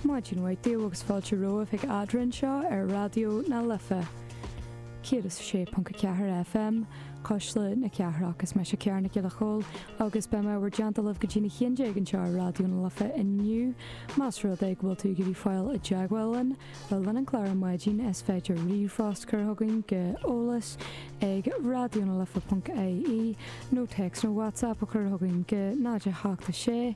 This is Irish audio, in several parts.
Maidin mhaith daoibh agus fáilte romhaibh a chairde anseo ar Raidió na Life 106.4 FM, Cuisle na Cathrach. Is mise Ciara Nic Giolla Chóill agus beidh mé in bhur dteannta libh go dtí a haon déag anseo ar Raidió na Life inniu. Más rud é go bhfuil tú ag iarraidh fáil i dteagmháil linn le linn an chláir ar maidin is féidir ríomhphost a chur chugainn go eolas ag raidionalife.ie nó téacs nó WhatsApp a chur chugainn go 086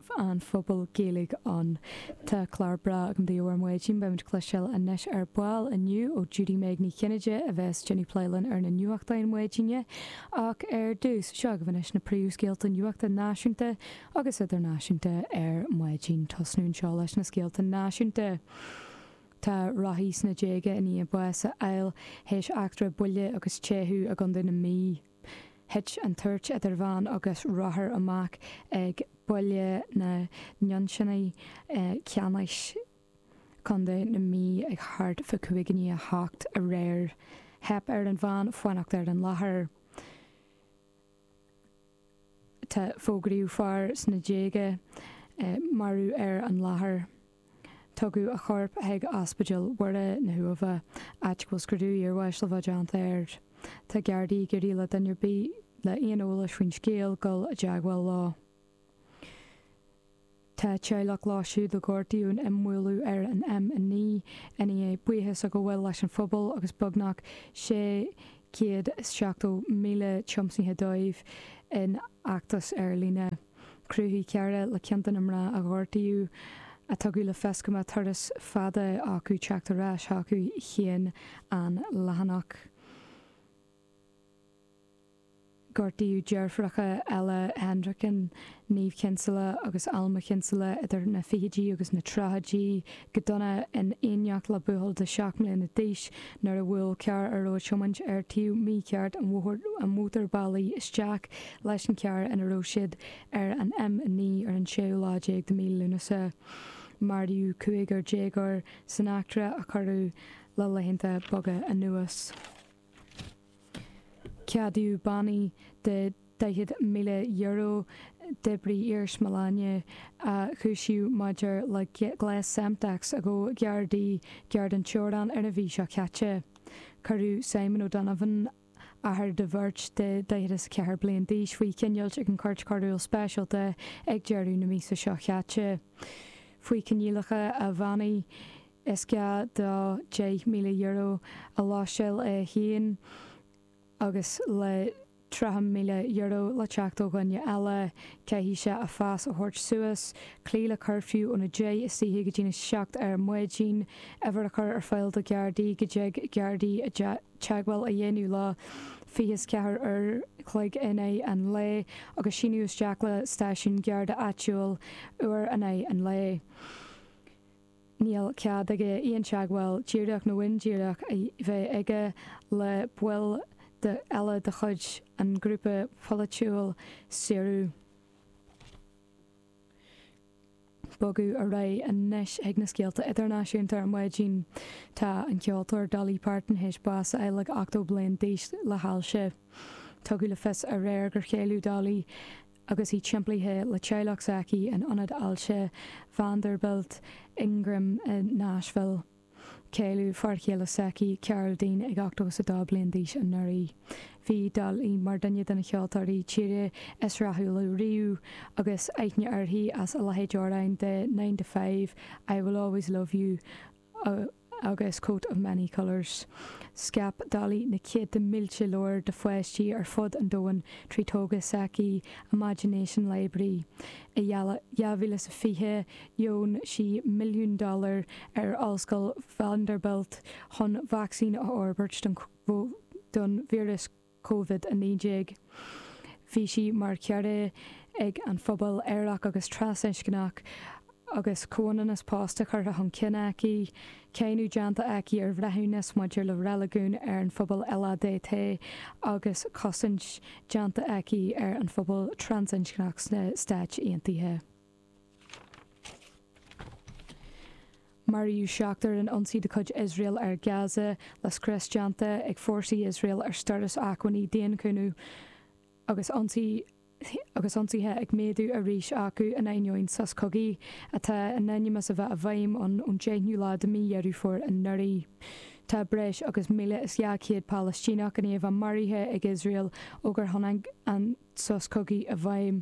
an phobail Gaeilge ann. Tá clár breá agam daoibh ar maidin, beimid ag cloisteáil anois ar ball inniu ó Judy-Meg Ní Chinnéide a bheas ag déanamh plé linn ar na nuachtáin maidine, ach ar dtús, seo agaibh anois na príomhscéalta nuachta náisiúnta agus idirnáisiúnta ar maidin. Tosnú anseo leis na scéalta náisiúnta. Tá rothaí sna déaga i ndiaidh bás a fháil théis eachtra buille agus teitheadh i gContae na Mí. Thit an tuairt idir veain agus rothar amach ag Baile na nUinseann, Ceannais, Co. na Mí ag thart fá chúig i ndiaidh a hocht aréir. Theip ar an veain fanacht ar an láthair. Fógraíodh fear sna déaga marbh ar an láthair. Tugadh a chorp chuig Ospidéal Mhuire na hUamha, áit go bhfuil scrúdú iarbháis le bheith déanta air. Tá Gardaí ag iarraidh le duine ar bith le aon eolas faoin scéal dul i dteagmháil leo. Tá teaghlach leo siúd a gortaíodh in imbhualadh ar an M9 i ndiaidh buíochas a ghabháil leis an phobal agus beagnach 670,000 tiomsaithe dóibh in fheachtas ar líne. Chruthaigh cara le ceann de na mná a gortaíodh a tugadh le fios go mbeadh turas fada acu teacht ar ais chucu féin an leathanach Gortaíodh deirfiúracha Ella Hendricken, Niamh Kinsella agus Alma Kinsella idir na fichidí agus na tríochaidí go dona in éineacht le buachaill de sheacht mbliana d'aois nuair a bhuail carr a raibh á thiomáint ar thaobh mícheart an mhótarbhealaigh isteach leis an charr ina raibh siad ar an M9 ar an séú lá déag de mhí Lúnasa. Maraíodh cúigear déagóir san eachtra a cuireadh le laethanta beaga anuas. Ceadaíodh bannaí de €40,000 d'oibrí iarsmalainne a cúisíodh maidir le gléas Semtex a ghabh Gardaí gar don Teorainn ar an mhí seo caite. Cuireadh Simon O'Donovan, athair do bheirt de daichead is a ceathair bliain d'aois faoi choinneáil ag an Chúirt Choiriúil Speisialta ag deireadh na míosa seo caite faoi coinníollacha a bhannaí. Is gá dó €10,000 a láimhseáil é féin agus le €30,000 le teacht ó dhuine eile caithfidh sé a phas a thabhairt suas, cloí le cuirfiú óna deich istoíche go dtí na seacht ar maidin, uimhir a chur ar fáil do Ghardaí go dtig Gardaí teagmháil a dhéanamh leo fiche is ceathair uair chloig in aghaidh an lae agus síniú isteach le stáisiún Garda áitiúil uair in aghaidh an lae. níl cead aige aon teagmháil díreach nó indíreach a bheith aige le baill eile de chuid an ghrúpa polaitiúil Saoradh. Bogadh ar aghaidh anois chuig na scéalta idirnáisiúnta ar maidin. Tá an ceoltóir Dolly Parton théis bás a fháil ag 80 bliain d'aois le hailse. Tugadh le fios aréir gur cailleadh Dolly, Agus í timplithe le teaghlach s'aici in Ionad Ailse Vanderbilt Ingram i Nashville, cailleadh fear chéile s'aici, Carl Dean, ag 82 bliain d'aois anuraidh. Bhí Dolly mar duine de na ceoltóirí tíre is rathúla riamh agus aithne uirthi as a leithéid d'amhráin de Nine to Five, I Will Always Love You, agus Coat of Many Colors. Scaip Dolly na céadta mílte leabhar do pháistí ar fud an domhain trí togra s'aici Imagination Library. I 2020 dheon sí milliún dollar ar Ollscoil Vanderbilt chun vacsaín a fhorbairt don víreas Covid-19. Bhí sí mar chara ag an phobal aerach agus trasinscneach agus comhionannas pósta curtha chun cinn aici, cáineadh déanta aici ar bhreithiúnas maidir le reiligiún ar an phobal LADT agus cosaint déanta aici ar an phobal trasinscneach sna Stáit Aontaithe. Maraíodh seachtar in ionsaí de chuid Iosrael ar Gaza le scrios déanta ag fórsaí Iosrael ar stóras acmhainní daonchúnamh agus ionsaithe ag méadú arís acu in ainneoin sos cogaidh atá in ainm is a bheith i bhfeidhm ón deichnú lá de mí Dheireadh Fómhair anuraidh. Tá breis agus 1,200 Palaistíneach in éifeacht maraithe ag Iosrael ó gur tháinig an sos cogaidh i bhfeidhm.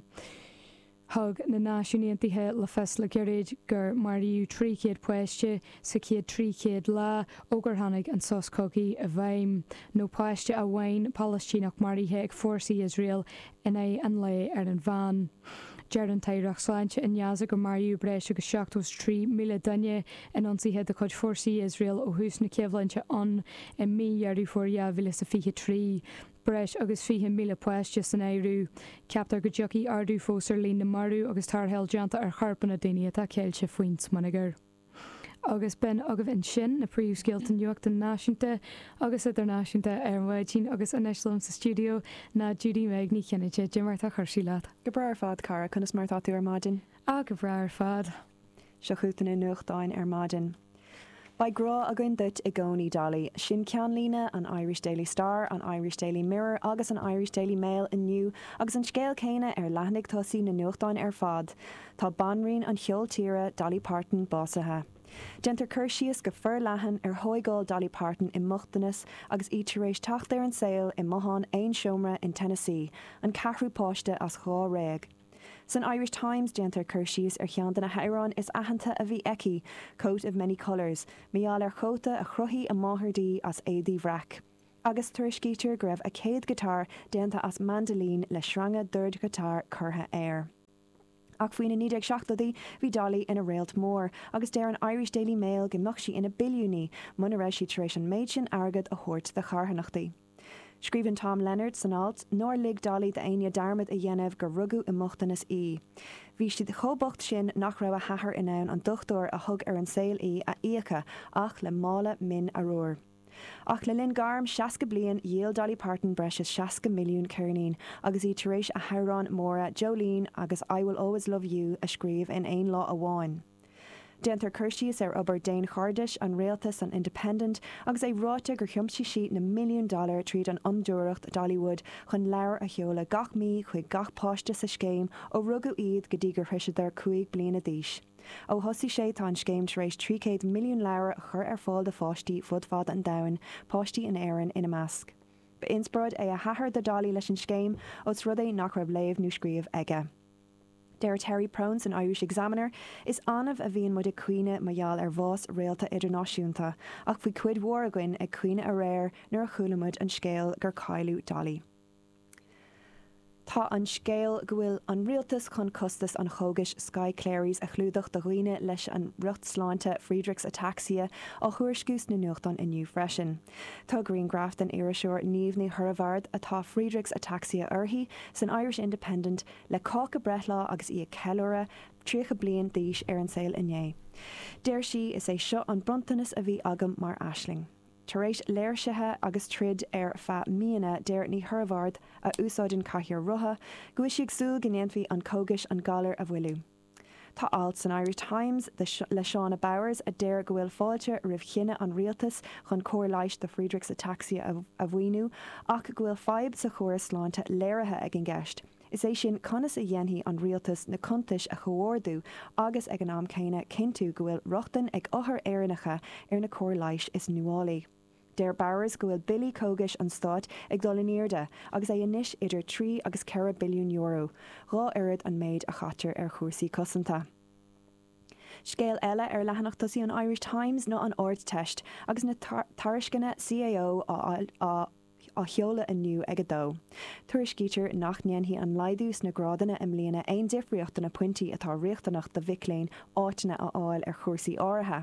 Thug na Náisiúin Aontaithe le fios le gairid gur maraíodh 300 páiste sa chéad 300 lá ó gur tháinig an sos cogaidh i bhfeidhm, nó páiste amháin Palaistíneach maraithe ag fórsaí Iosrael in aghaidh an lae ar an mheán. Deir an tAireacht Sláinte i nGaza gur maraíodh breis agus 73,000 duine in ionsaithe de chuid fórsaí Iosrael ó thús na coimhlinte ann i mí Dheireadh Fómhair 2023. Breis agus 20,000 páiste san áireamh. Ceaptar go dtiocfaidh ardú fós ar líon na marbh agus tarrtháil déanta ar chorpanna daoine atá ceilte faoin smionagar. Agus b'in agaibh ansin na príomhscéalta nuachta náisiúnta agus idirnáisiúnta ar maidin agus anois liom sa stiúideo ná Judy-Meg Ní Chinnéide. Cad é mar tá cúrsaí leat? Go breá ar fad, cara, conas mar atá tú ar maidin? Ah, go breá ar fad. Seo chugat na nuachtáin ar maidin. Beidh grá againn duit i gcónaí, Dolly. Sin ceannlíne an Irish Daily Star, an Irish Daily Mirror agus an Irish Daily Mail inniu agus an scéal céanna ar leathanaigh tosaigh na nuachtáin ar fad, tá banríon an cheoil tíre, Dolly Parton, básaithe. Déantar cur síos go forleathan ar thóigáil Dolly Parton i mbochtanas agus í tar éis teacht ar an saol i mbothán aon seomra in Tennessee, an ceathrú páiste as dhá réag. San Irish Times déantar cur síos ar cheann de na hamhráin is aitheanta a bhí aici, 'Coat of Many Colours', mar gheall ar chóta a chruthaigh a máthair di as éadaí bhreac. Agus tuairiscítear go raibh a céad giotár déanta as mandolin le sreanga dordghiotár curtha air. Ach faoi na 1970idí bhí Dolly ina réalt mór agus deir an Irish Daily Mail go mbeadh sí ina billiúnaí muna raibh sí tar éis an méid sin airgead a thabhairt do charthanachtaí. Scríobhann Tom Leonard san alt nár lig Dolly d'éinne dearmad a dhéanamh gur rugadh i mbochtanas í. Bhí siad chomh bocht sin nach raibh a hathair in ann an dochtúir a thug ar an saol í a íoc ach le mála min arbhair. Ach le linn gairm 60 bliain dhíol Dolly Parton breis is 60 milliún ceirnín agus í tar éis a hamhráin mhóra Jolene agus I Will Always Love You a scríobh in aon lá amháin. Déantar cur síos ar obair daonchairdis an réalta san Independent agus é ráite gur thiomsaigh sí na milliúin dollar tríd an fhondúireacht Dollywood chun leabhair a sheoladh gach mí chuig gach páiste sa scéim ó rugadh iad go dtí gur shroiseadar cúig bliana d'aois. Ó thosaigh sé tá an scéim tar éis 300 milliún leabhar a chur ar fáil do pháistí fud fad an domhain, páistí in Éirinn ina measc. Ba inspioráid é a hathair do Dolly leis an scéim, ós rud é nach raibh léamh nó scríobh aige. Deir Terry Prone san Irish Examiner, Is annamh a bhíonn muid ag caoineadh mar gheall ar bhás réalta idirnáisiúnta, ach bhí cuid mhór againn ag caoineadh aréir nuair a chuala muid an scéal gur cailleadh Dolly. Tá an scéal go bhfuil an rialtas chun costas an chógais Skyclarys a chlúdach do dhaoine leis an riocht sláinte Friedreich's ataxia á thuairisciú sna nuachtáin inniu freisin. Tá grianghraf den iriseoir Niamh Ní Hoireabhaird, atá Friedreich's ataxia uirthi, san Irish Independent, le cáca breithlá agus í ag ceiliúradh 30 bliain d'aois ar an saol inné. Deir sí, Is é seo an bronntanas a bhí agam mar aisling. Tar éis léirsithe agus troid ar feadh míonna deir Ní Hoireabhaird, a úsáideann cathaoir rotha, go bhfuil sí ag súil go ndéanfaidh an cógais an galar a mhoilliú. Tá alt san Irish Times le Shauna Bowers a deir go bhfuil fáilte roimh chinneadh an rialtais chun cóir leighis do Friedrichs ataxia a mhaoiniú ach go bhfuil fadhb sa chóras sláinte léirithe ag an gceist, is é sin conas a dhéanfaidh an rialtas na cuntais a chomhordú agus ag an am céanna cinntiú go bhfuil rochtain ag othair Éireannacha ar na cóir leighis is nuálaí. Deir Bowers go bhfuil billí cógais an stáit ag dul in airde agus é anois idir trí agus ceithre billiún euro, dhá oiread an méid a chaitear ar chúrsaí cosanta. Scéal eile ar leathanach tosaigh an Irish Times ná an Ardteist agus na tairisceana CAO á á sheoladh inniu ag 2. Tuairiscítear nach ndéanfaidh an laghdú sna grádanna i mbliana aon difríocht do na pointí atá riachtanach do mhic léinn áiteanna a fháil ar chúrsaí áirithe.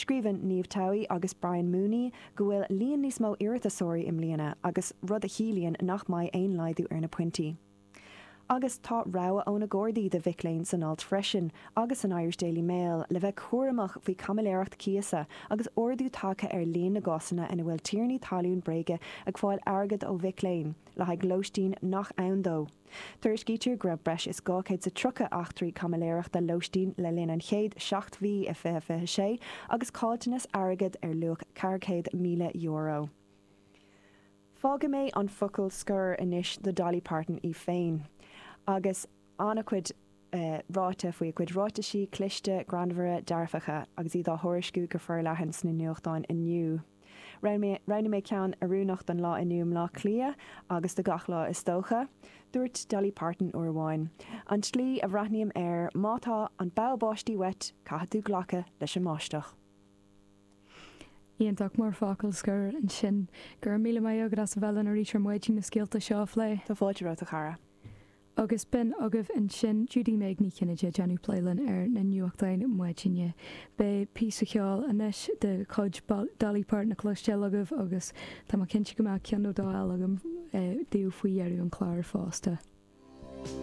Scríobhann Niamh Towie agus Brian Mooney go bhfuil líon níos mó iarratasóirí i mbliana agus, rud a chiallaíonn nach mbeidh aon laghdú ar na pointí. Agus tá rabhadh ó na Gardaí do mhic léinn san alt freisin, agus an Irish Daily Mail, le bheith cúramach faoi caimiléireacht cíosa, agus ardú tagtha ar líon na gcásanna ina bhfuil tiarnaí talún bréige ag fáil airgead ó mhic léinn le haghaidh lóistín nach ann dó. Tuairiscítear go raibh breis is 230 eachtraí caimiléireachta lóistín le linn an chéad seacht mhí i 2026 agus caillteanas airgead ar luach €400,000. Fágfaidh mé an focal scoir anois do Dolly Parton í féin. Agus an-chuid ráite faoi a cuid ráitisí cliste, greannmhara, dearfacha, agus iad á thuairisciú go forleathan sna nuachtáin inniu, roghnaigh mé ceann oiriúnach don lá inniu i mBleá Cliath, agus do gach lá is dócha. Dúirt Dolly Parton uair amháin, An tslí a bhreathnaím air, má tá an bogha báistí uait, caithfidh tú glacadh leis an mbáisteach. Iontach mar focal scoir ansin, go raibh míle maith agat as a bheith linn arís ar maidin na scéalta seo a phlé. Tá fáilte romhat, a chara. Agus b'in agaibh ansin Judy-Meg Ní Chinnéide ag déanamh plé linn ar na nuachtáin maidine. Beidh píosa ceoil anois de chuid Dolly Parton le cloisteáil agaibh agus tá mé cinnte go mbeadh ceann nó dó eile agam daoibh faoi dheireadh an chláir fosta.